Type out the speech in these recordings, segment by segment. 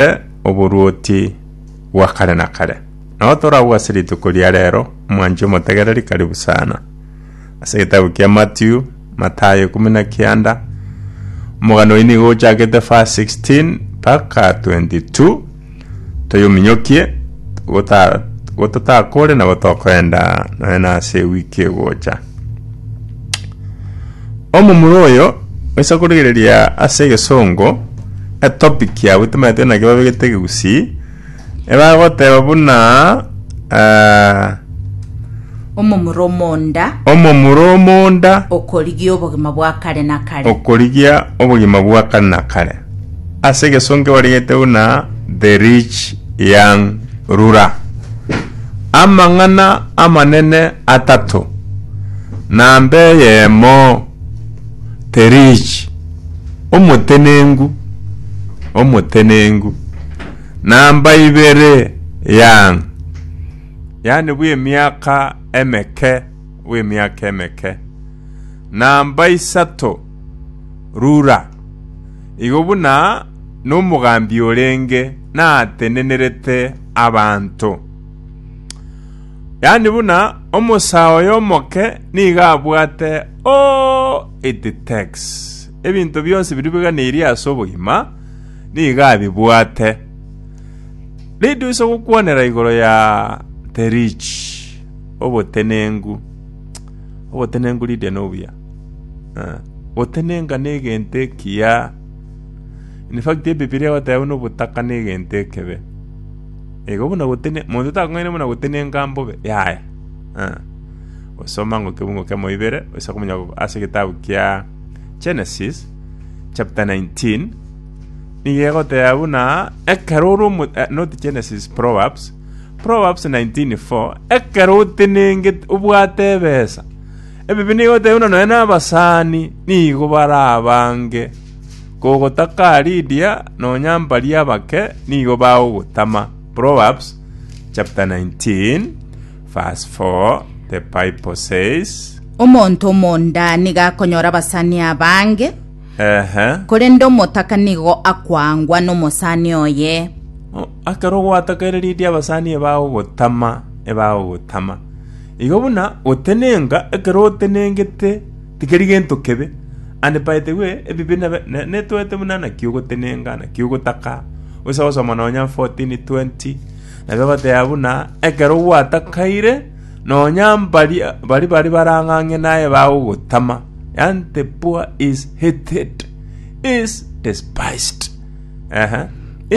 Tore oboruoti bwa kare na kare. Nao tore agwo ase rituko ria rero, omwanchi omotegereri karibu sana. Ase egetabu kia Matiu, Matayo ikomi na kianda, omogano oyio nigo ochakete verse 16 mpaka 22, toyominyokie gota- gototakore nabo tokoenda nonya nase ewiki egocha. Omomura oyo oisa korigereria ase egesongo etopic yabo etamaneti naki babegete egegusii ebagoteba buna ah, omomura omonda omomura omonda okorigia obogima bwa kare na kare okorigia obogima bwa kare na kare ase egesonki barigeteu na The Rich Young Ruler. Amang'ana amanene atato. Namba eyemo, The Rich, omotenenku, omotenenku. Namba ibere, Young, yaani bw'emiaka emeke, bw'emiaka emeke. Namba isato, Rura! Igo buna nomogambi orenge natenenerete abanto. Yaani buna omosaa oye omoke nigo abwate oh, it takes. Ebinto bionsi biribuganirie ase obogima nigo abibwate. Nidu ise gokwanera igoro ya the rich obotenengu. Obotenengu Lydia nobuya. Gotenenka negento ekiya. In fact Ebibilia egoteba buna obotaka negento ekebe. Igo buna gotene monto takong'aina buna gotenenka mbobe yaya. Osoma ng'a ekiungo kia moibere oisa komanya ase egetabu kia Genesis chapter 19 nigo egoteba buna ekero ore not Genesis Proverbs, Proverbs 19:4 ekero otenengete obwate ebesa Ebibe nigo bitayoirwe nonya nabasani, nigo barabange, kogotaka Lidia nonya mbaria abake nigo bagogotama. Proverbs chapter 19 verse 4, the Bible says, Omonto omonda nigo akonyora abasani abange, Ehe. korende omotaka nigo akwangwa nomosani oye. O- Akero gwatakaire Lidia abasani ebagogotama, ebagogotama. Igo buna gotenenga ekero otenengete tikeri gento kebe, and paetigwe ebibe netoete buna naki ogotenenga naki ogotaka, osa gosoma nonya 14, 20 nabo egoteba buna ekero gwatakaire nonya mbari baria bari barang'ang'e naye bagogotama, yaani the poor is hated, is despised. Ehe.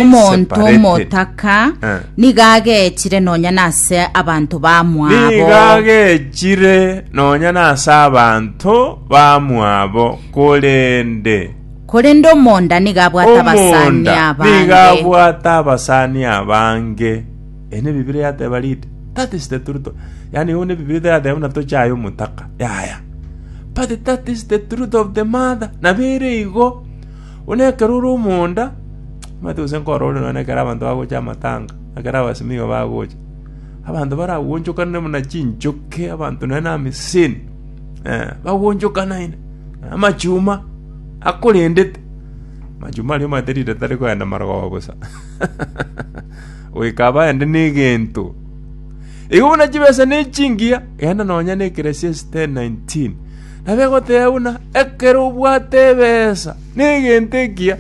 Omonto Separated. omotaka Eh. nigo agechire nonya nase abanto bamwabo niga gechire nonya nase abanto bamwabo korende korende omonda nigo abwate abasani omonda niga abange abwate abasani abange ene bibiri yateba rite that is the truth yani one bibiri yateba buna tochaye omotaka yaya but that is the truth of the mother nabere igo Buna ekero ore omonda, omanyete gose nkorore nonye na ekero abanto bagocha amatanga, na ekero abasimigwa bagocha, abanto baraguonchokanere buna chinchoke, abanto nonye na amisini, eh, baguonchokanaine, na amachuma akorendete. Amachuma aria omanyete riria tari koenda marogoba bosa, goika baende na egento. Igo buna chibesa ne chingiya, genda nonye na ekeresia esitae 19. Na begoteeba buna, Ekero obwate ebeesa negento ekiya,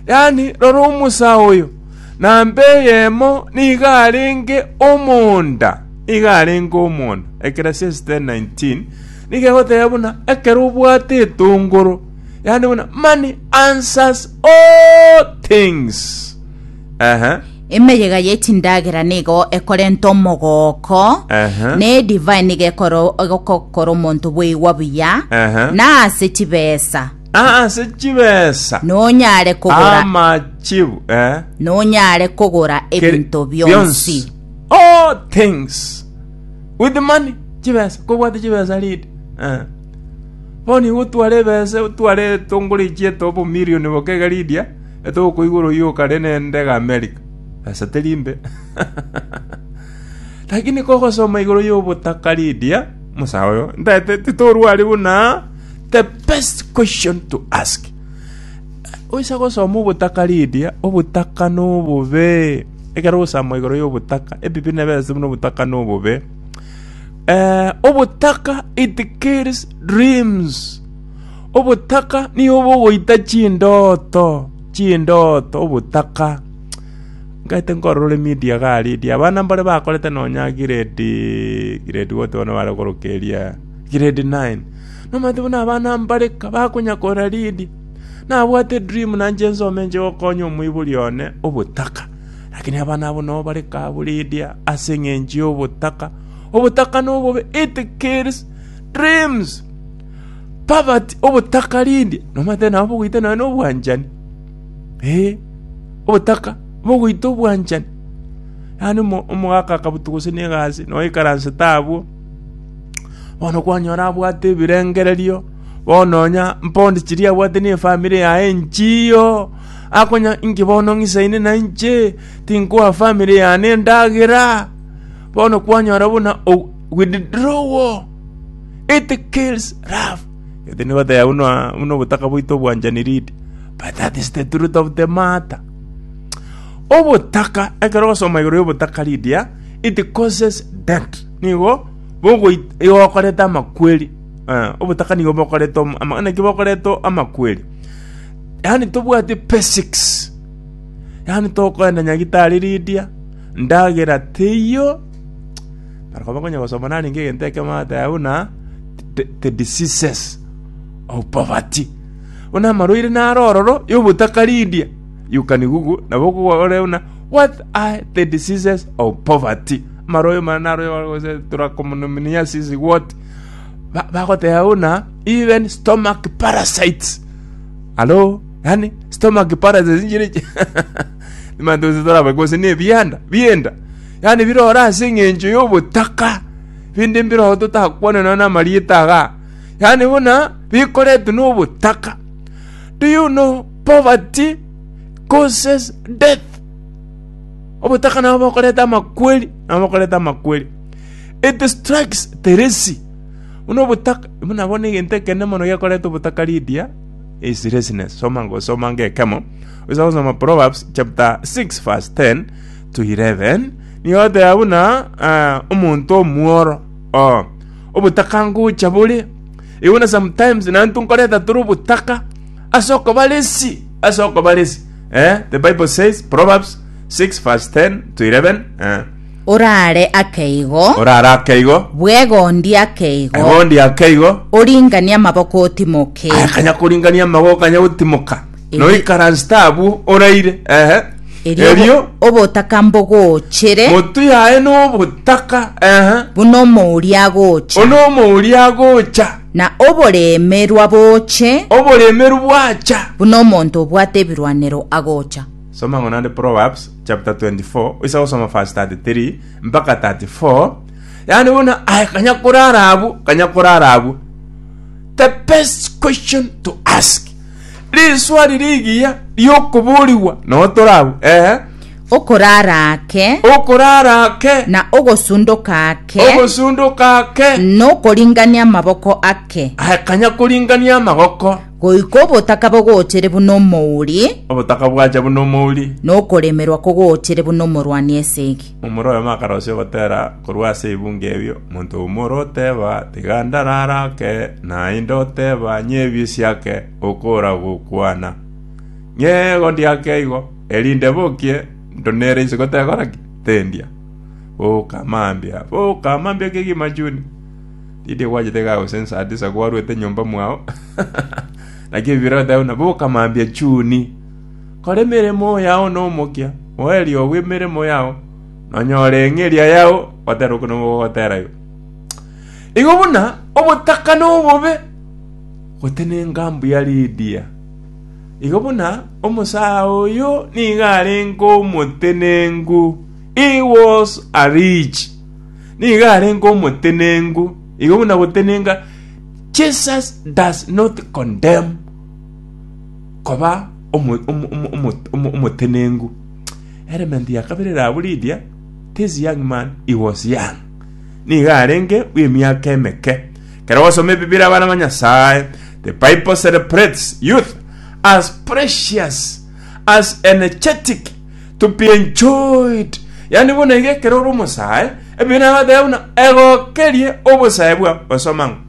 yaani rora omosa oyo, na mbe eyemo nigo arenge omonda, nigo arenge omonda. Ecclesiastes 10:19 nigo egoteba buna, Ekero obwate etongoro, yaani buna, money answers all things. Ehe. Emeyega ye chindagera nigo ekorenta omogooko, Ehe. na edivai nigo ekoro- egokokora omonto bweigwa buya, Ehe. na ase chibesa Ase chibesa. nonyare kogora Amachibu. Eh. nonyare kogora Keri- ebinto bionsi All things. With money. Chibesa. Kobwate chibesa lead. Eh. Boni gotwara ebesa, otware etongore ichieto obo million bokega Lydia. Ere tokoigwa oroyioka rinende iga Amerika, pesa teri mbe. Lakini kogosoma igoro y'obotaka Lydia, omosae oyo, ntaete titorua aria buna the best question to ask. Oisa gosoma obotaka Lydia, obotaka nobobe. Ekero ogosama igoro y'obotaka, ebibe nebe ase buna obotaka nobobe. Eh, obotaka it kills dreams. Obotaka nigo bogoita chindooto, chindooto obotaka. Ngete nkorora media iga already, abana mbare bakorete nonya grade grade what bono bare gokoroka eria, grade nine. Nomanyete buna abana mbare kabakonya kora read, nabwate edream nanche nsome nche gokonya omoibori one obotaka. Lakini abana abwo nabo bare kabu read ase eng'encho ya obotaka. Obotaka nobobe, it kills dreams. Poverty, obotakarindi, nomanyete nabo bogoita nonya na obwanchani, ee, obotaka bogoita obwanchani. Yaani omo- omogaka akabutu gose na egasi, noikaransete abwo, bono kwanyora abwate ebirengererio, bono nonya mpondi chiria abwate na efamiri yaye enchiiyo, akonya inki bono ng'isaine na inche, tinkoa famiri yane endagera, bono kwanyora buna o- withdrawal. It kills love. Gete nibatebia buna buna obotaka bwaito obwanchani ridi. But that is the truth of the matter. Obotaka, ekero ogosoma igoro y'obotaka ridia, it causes death. Nigo bogoi- igo bokoreta amakweri. Eh, obotaka nigo bokoreta om- ama- naki bokoreta amakweri. Yaani tobwati basics. Yaani tokoenda nyagitari ridia, ndagera teiyo, Barabwo bakonya gosoma narenge egento ekemo bagateba buna the diseases of poverty. Buna amarwaire naro ororo ya obotakaridia. You can google nabo okore buna what are the diseases of poverty. Amarwaire mana naro gose turakomonominiasis what. Ba- Bagoteba buna even stomach parasites. Alo, yani stomach parasites inchire Nibanto onsi torabe gose nebianda bi'enda, yaani bire ore ase engencho y'obotaka, binde mbire oo totakwane nonya namarieta iga, yaani buna bikoretwe n'obotaka. Do you know poverty causes death? Obotaka nabo bokoreta amakweri, nabo bokoreta amakweri. It strikes Teresi. Buna obotaka, buna bono egento ekenene mono gekoreta obotaka Lydia is laziness. Soma ngo, soma ngekemo. Oisa gosoma Proverbs chapter 6 verse 10 to 11 nigo oteba buna ah, omonto omworo oh, obotaka ngocha bore igo na sometimes nantu nkoreta tore obotaka ase okobaresi ase okobaresi eh, the bible says Proverbs 6 verse 10 to 11 eh, orare akeigo orara akeigo bwegondi akeigo egondi akeigo oringanie amaboko otimoke akanya koringania amago kanya gotimoka noikaransete abwo oraire ehe erio erio obo- obotaka mbogochere motu yaye nobotaka ehe buna omouri agocha ono omouri agocha na oboremerwa boche oboremeru bwacha buna omonto obwate ebirwanero agocha soma ng'o nande proverbs chapter 24 oisa gosoma verse 33 mpaka 34 yaani bono aye kanya korara abwo kanya korara abwo the best question to ask Rinswari rigiya ri'okoborigwa nao tore abwo, ee. Okorara ake. Okorara ake. Na ogosundoka ake. Ogosundoka ake. Nokoringania amaboko ake. Akanya koringania amagoko. Goika obotaka bogochere buna omouri. Obotaka bwacha buna omouri. Nokoremerwa kogochere buna omorwani esegi. Omorwoti oyomo akaroisia ogotera korwa ase ebungo erio, omonto oyomo ore oteba, Tiga ndarare ake, naende oteba, Nyebie siake, okora gokwana. Ng'ego ndiake igo, erinde bokie, ndonere inse gotekora ki? Tendia. Boka mambia, boka mambia kegima chuni. Tindi ogwachete iga gose saa tisa kwarwete nyomba mwao. Naki ebibe biragoteba buna, Boka mambia chuni. Kora emeremo yao nomokia, moerio bw'emeremo yao, nonyore eng'eria yao gotera okwo nigo gogotera igo. Igo buna obotaka nobobe gotenenka mbuya ridia, igo buna omosaa oyo nigo arenge omotenenku, he was a rich, nigo arenge omotenenku, igo buna gotenenka Jesus does not condemn. koba omo, omo, omo, omo, omo, omotenengu. Element ya kabere erabo Lydia, this young man, he was young. Niga arenge bw'emiaka emeke. Kero gosoma ebibira abana ba Nyasaye, the Bible celebrates youth as precious, as energetic, to be enjoyed. Yani bono iga ekero ore omosae, ebibira nabateba buna egokerie obosae bwao, osoma ng'a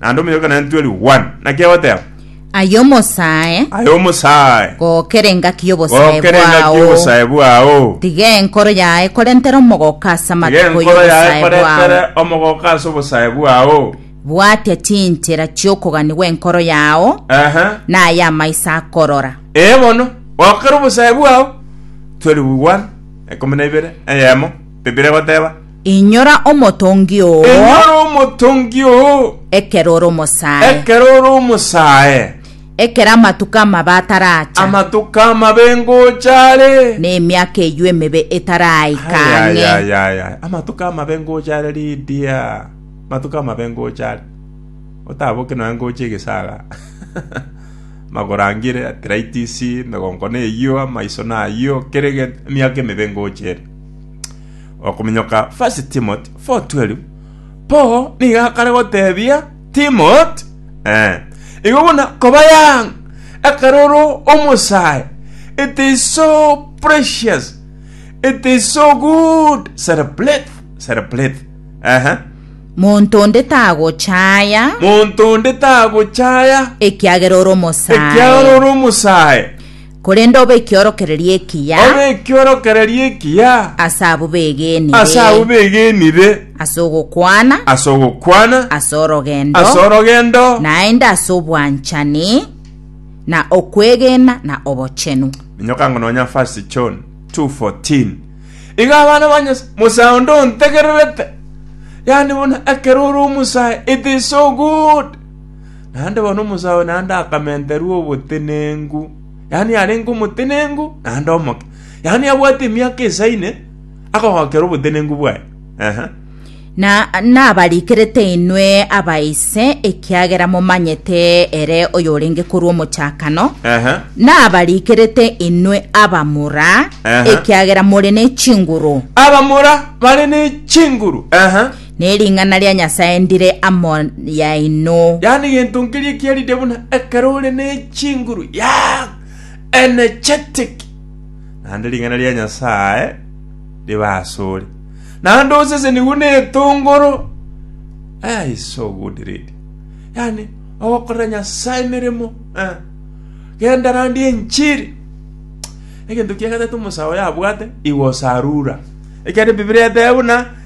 naende omonyaroke naye ntweri one naki agoteba Aye omosae, aye omosae gokera engaki y'obosae gokera engaki bwao. y'obosae bwao Tiga enkoro yaye korentere omogoka ase tiga amatuko enkoro yaye y'obosae koretere bwao. omogoka ase obosae bwao Bwatia chinchera chi'okogania gw'enkoro yao, ehe na ay'amaiso akorora. ee bono gokera obosae bwao ntweri one ekomi na ibere eyemo bibiri egoteba Inyora omotongi oo. Inyora omotongi oo. Ekero ore omosae. Ekero ore omosae. Ekero amatuko amabe ataracha. Amatuko amabe ngocha are. Na emiaka eyio emebe etaraika ang'e. Amatuko amabe ngocha are Lydia. Amatuko amabe ngocha are. Otaboke nonya ngocha egesaga. Amagoro angire, arthritis, emegongo neyio, amaiso nayio, kera egento, emiaka emebe ngocha ere. Okominyoka 1 Timothy 4:12 Paulo nigo akare gotebia Timothy, ee, igo buna koba young ekero ore omosae, it is so precious, it is so good, celebrate, celebrate. Ehe. Monto onde tagochaya, Monto onde tagochaya ekiagera ore ekiagera omosae. ore omosae. Korende obe ekiorokererio ekiya Obe ekiorokererio ekiya ase abwo begenire, ase abwo begenire, ase ogokwana, ase ogokwana, ase orogendo, ase orogendo, naende ase obwanchani, na okwegena, na obochenu. Minyoka ng'a nonya 1 John 2:14. Iga abana ba Nyasae, mosae onde ontegererete, yaani buna ekero ore omosae, it is so good. naende bono omosae naende akamenterwa obotenenku, yaani arenge omotenenku naende omoke, yaani abwate emiaka esaine akogokera obotenenku bwaye. Ehe. Na nabarikerete inwe abaise, ekiagera momanyete ere oyorenge korwa omochakano. Ehe. Nabarikerete inwe abamura, Aha. ekiagera more ne chinguru. Abamura bare ne chinguru. Ehe. Ne ring'ana ria Nyasae ndire amo yaino. Yaani gento nkeria kiarire buna ekero ore ne chinguru yaah! Energetic! Naende ring'ana ria Nyasae ribe asore. Naende osesenigwe ne etongoro. Eeh is so good lady. Yaani ogokorera Nyasae emeremo eh. Genda randi enchiri. Egento kia gatato omosae oyo abwate, he was a ruler. Ekiagera ebibilia etebe buna.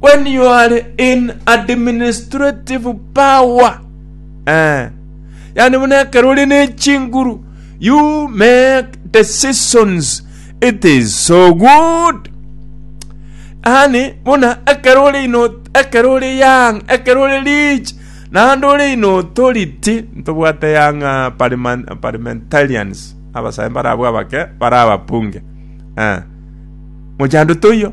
When you are in administrative power, eh, yani buna ekero ore ne chinguru, you make decisions, it is so good. Yani buna ekero ore ino ekero ore young, ekero ore rich, naende ore in authority, ntobwate young ah, parliament, parliamentarians, abasae barabwo abake, barababunge. Eh. Mochando toiyo.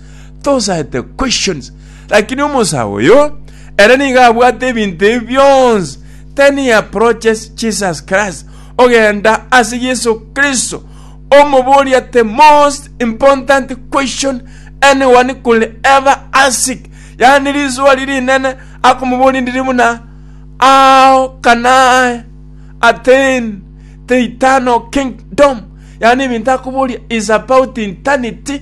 tosaete questions. Lakini omosaa oyo, ere nigo abwate ebinto ebi bionsi, then he approaches Jesus Christ, ogenda ase Yesu Kristo, omoboria the most important question anyone could ever ask, yaani riswali rinene akomoboria ndiri buna how can I attain the eternal kingdom? Yaani ebinto akoboria is about eternity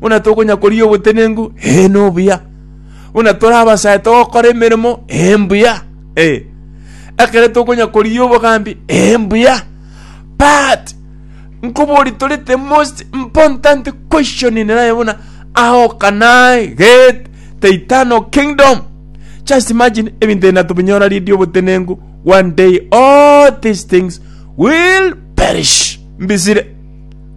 Buna tokonya koria obotenenku, ee nobuya, buna tore abasae togokora emeremo, ee mbuya, ee, ekero tokonya koria obogambi, ee mbuya. But nkoboria tore the most important question in life buna how can I get the eternal kingdom? Just imagine ebinto ebi natubinyora ridi obotenenku one day all these things will perish. Mbisire.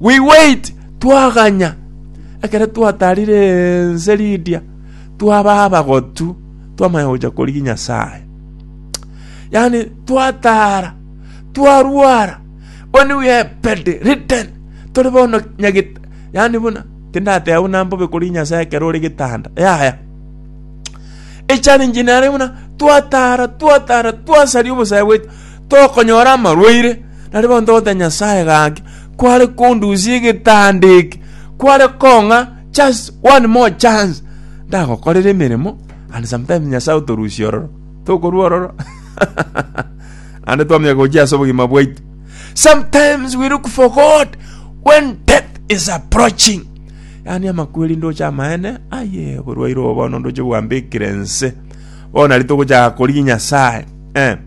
We wait, twaganya, ekero twatarire ense Lidia, twaba abagotu, twamanya gocha korigia Nyasae. Yani twatara, twarwara, when we are bed ridden, tore bono nyagita, yani buna tindateba buna mbobe korigia Nyasae ekero ore gitanda. Yaya. Echallenge nare buna twatara, twatara, twasaria obosae bwetu. tokonyora amarwaire, na ribaao ntogoteba Nyasae gaki kware kondusia egetanda eke, kware kong'a just one more chance ndagokorere emeremo, and sometimes Nyasae otorusia ororo, tokorua ororo ande twamanya gochia ase obogima bwaito. Sometimes we look for God when death is approaching. Yaani amakweri ndoche amaene, aye oborwaire obo bono ndoche bwambekire ense. Bono nari togochaka korigia Nyasae. Eh.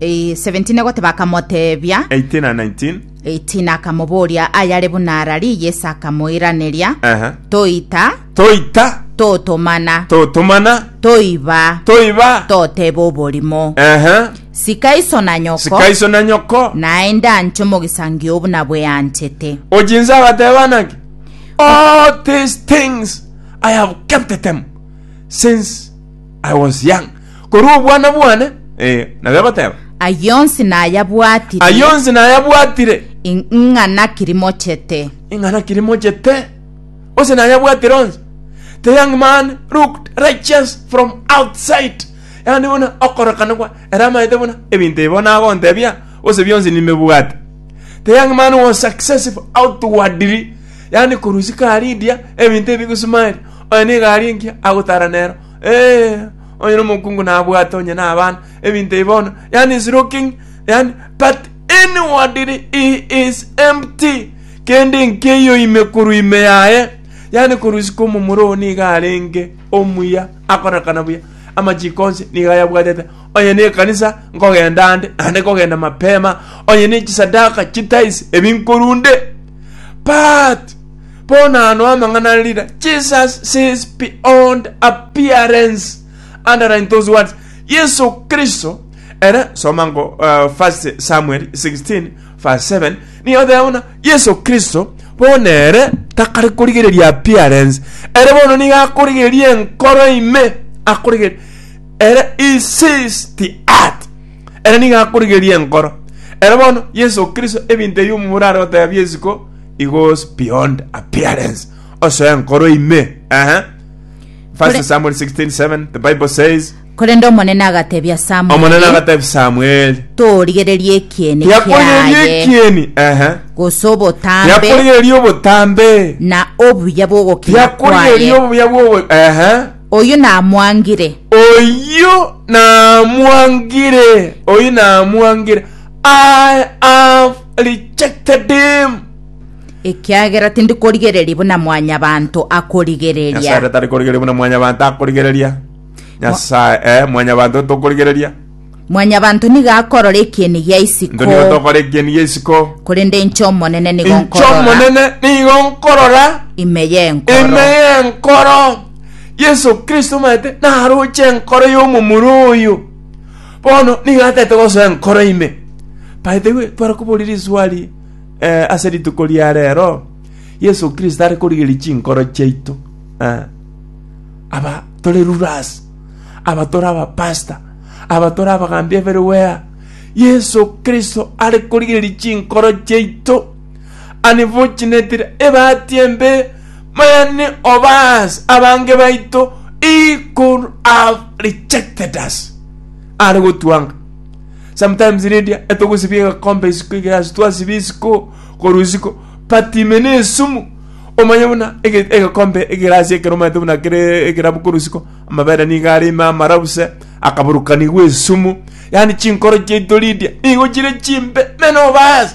Eh, 17 agoteba akamoteebia 18 and 19. 18 akamoboria ayare buna ararie yesu akamoiraneria Ehe. toita Toita, totomana totomana, toiba toiba. toteba oborimo Ehe. sika iso na nyoko Sika iso na nyoko. naende anche omogisangio buna bweanchete Ojinsa agateba naki. All these things I have kept them since I was young. Korwa obwana bwane, ee, nabo egoteba, Ayio onsi nayabwatire. ayio onsi nayabwatire, Ing'a naki rimochete? ing'a naki rimochete? Onsi nayabwatire onsi. The young man looked righteous from outside. Yaani buna okorokana kwa ere amaete buna ebinto ebi bono agontebia gose bionsi nimebwate. The young man was successful outwardly. Yaani korusia karidia ebinto ebi gosmile. Oyo nigo aria enki agotara nero. Ee, onye nomokungu nabwate onye nabana, ebinto ebi bono, yani is looking, yani but inwardly he is empty, kende nkeiyo ime korwa ime yaye, yani korwa isiko omomura oo nigo arenge omuya akonakana buya, amachiko onsi nigo ayabwatete, onye ne ekanisa nkogenda ande, naende kogenda mapema, onye ne chisadaka chitaisi ebi nkorunde, but Bono ano amang'ana are rina, Jesus sees beyond appearance, underline those words, Yeso Kristo ere, soma ngo uh, 1 Samuel 16 verse 7, nigo oteba buna Yeso Kristo bono ere takare korigereria appearance, ere bono nigo akorigereria enkoro ime, akorigereria ere he sees the heart, ere nigo akorigereria enkoro, ere bono Yeso Kristo ebinto ebi omobura are goteba biesiko He goes beyond appearance. Osoya nkoro ime. Aha. First Kore- Samuel 16:7, the Bible says, korende omonene agatebia Omonene samueli agatebia Samuel, torigereria ekiene yakorigereria kiaye ekieni. Aha. gose obotambe Yakorigereria obotambe. na obuya bw'ogokina Yakorigereria kwaye obuya bwobo. Aha. oyo namwangire Oyo namwangire. Oyo namwangire. I have rejected him. Ekiagera tindi korigereria buna mwanyabanto Nyasae akorigereria. ratari korigereria buna mwanyabanto akorigereria. Nyasae, eh, mwanyabanto tokorigereria. Mwanyabanto nigo akorora ekieni gia Into isiko, nigo tokora ekieni gia isiko. korende inche Omonene nigo Inche nkorora Omonene nigo nkorora ime ime y'enkoro. y'enkoro. Yeso Kristo omanyete naroche enkoro y'omomura oyo. Bono nigo atete gosoa enkoro ime. By the way, tware koboria riswali eh, ase rituko ria rero, Yeso Kristo are korigeria chinkoro chiaito. Eh. Aba tore rulers, aba tore abapasta, aba tore abagambi everywhere. Yeso Kristo are korigeria chinkoro chiaito. Unfortunately, ebahati embe, many of us, abange baito, he could have rejected us. Are gotwanga. Sometimes Lydia, etogosibia egakombe isiko egerasi twasibia isiko korwa isiko, but ime na esumu omanye buna ege- egakombe egerasi ekero omaete buna kere ekerabu korwa isiko amabere nigo are ime amarabuse akaburukanigwa esumu yani chinkoro chiaito Lydia nigo chire chimbe many of us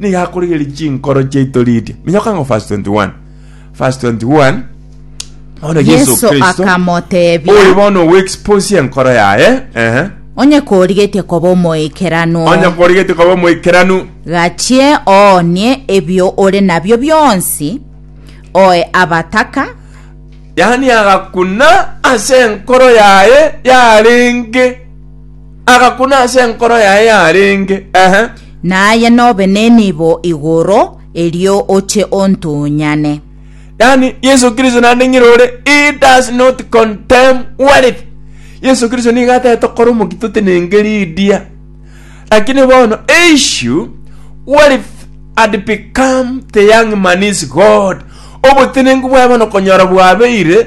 nigo akorigereria chinkoro chiaito riria minyoka ng'o verse 21 verse 21 bono yesu Yesu kristo oyo akamoteebia, bono ogoexposia enkoro yaye ehe onye korigetie koba omoikeranu, onye korigetie koba omoikeranu gachie oonie ebio ore nabio bionsi, oe abataka, yaani agakuna ase enkoro yaye yarenge Agakuna ase enkoro yaye yarenge, ehe. Naye nobe nenibo igoro, erio oche ontunyane. Yaani Yesu Kristo naende ng'ire ore, he does not condemn wealth. Yesu Kristo nigo atete okora omoki totenenge ridia. Lakini bono issue, wealth had become the young man's god. Obotenenku bwaye bono konyora bwabeire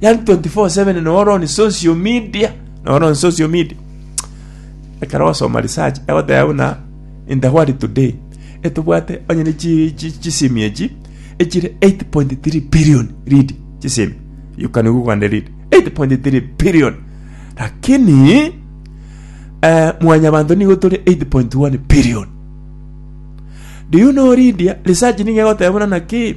Yani 24 7 noro on social media noro on social media ekero ogosoma research egoteba buna in the world today etobwate onye ne chi- chi- chisemi echi echire 8.3 billion read chisemi you can google and read 8.3 billion lakini eh, mwanyabanto nigo tore 8.1 billion do you know Lydia research nigo egoteba buna naki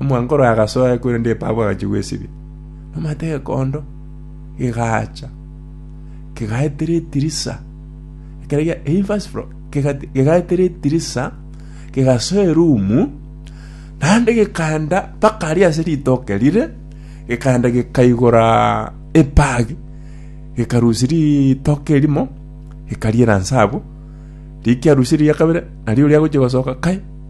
Omwango oro agasoe, korende epabu agachia gwesibia. Nomanyete gekondo gegacha, kegaetera etirisa, ekero gia- eh, first floor, kegati- kegaetera etirisa, kegasoa erumu, naende gekaenda mpaka aria ase ritoke rire, gekaenda gekaigora epagi, gekarusia ritoke erimo, gekariera inse abwo, rikiarusirie riakabere, nario oria agochia gosoka, kai,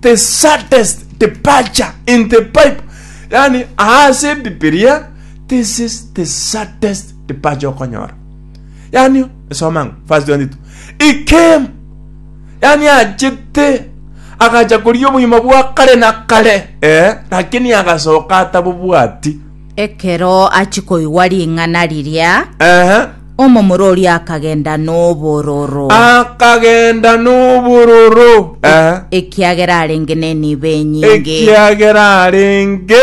the saddest departure in the bible yani aase ebibiria this is the saddest departure okonyora yani esoma ng'o verse 22 he came yani achete agacha koria obogima bwa kare na kare eh, lakini agasoka atabobwati Ekero achia koigwa ring'ana riria, Ehe. omomura oria akagenda nobororo, Akagenda nobororo. Ehe. ekiagera arenge nenibo enyinge. ekiagera arenge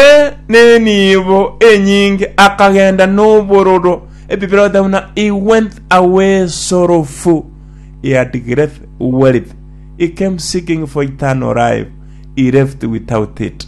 nenibo enyinge akagenda nobororo ebibere ote buna he went away sorrowful he had great wealth he came seeking for eternal life he left without it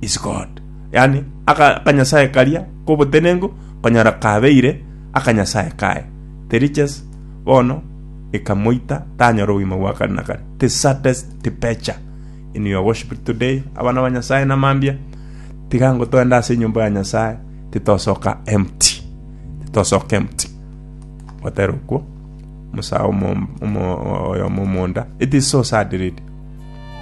is God. Yani aka- akanyasae karia kobotenenku konyora kabeire akanyasae kaye. The riches bono ikamoita tanyora obogima bwa kare na kare. The saddest departure in your worship today, abana ba Nyasae na mambia, tiga ngo toende ase enyomba ya Nyasae, titosoka empty. Titosoka empty. Gotera okwo, musa omo- omo- oyomo omonda. It is so sad really.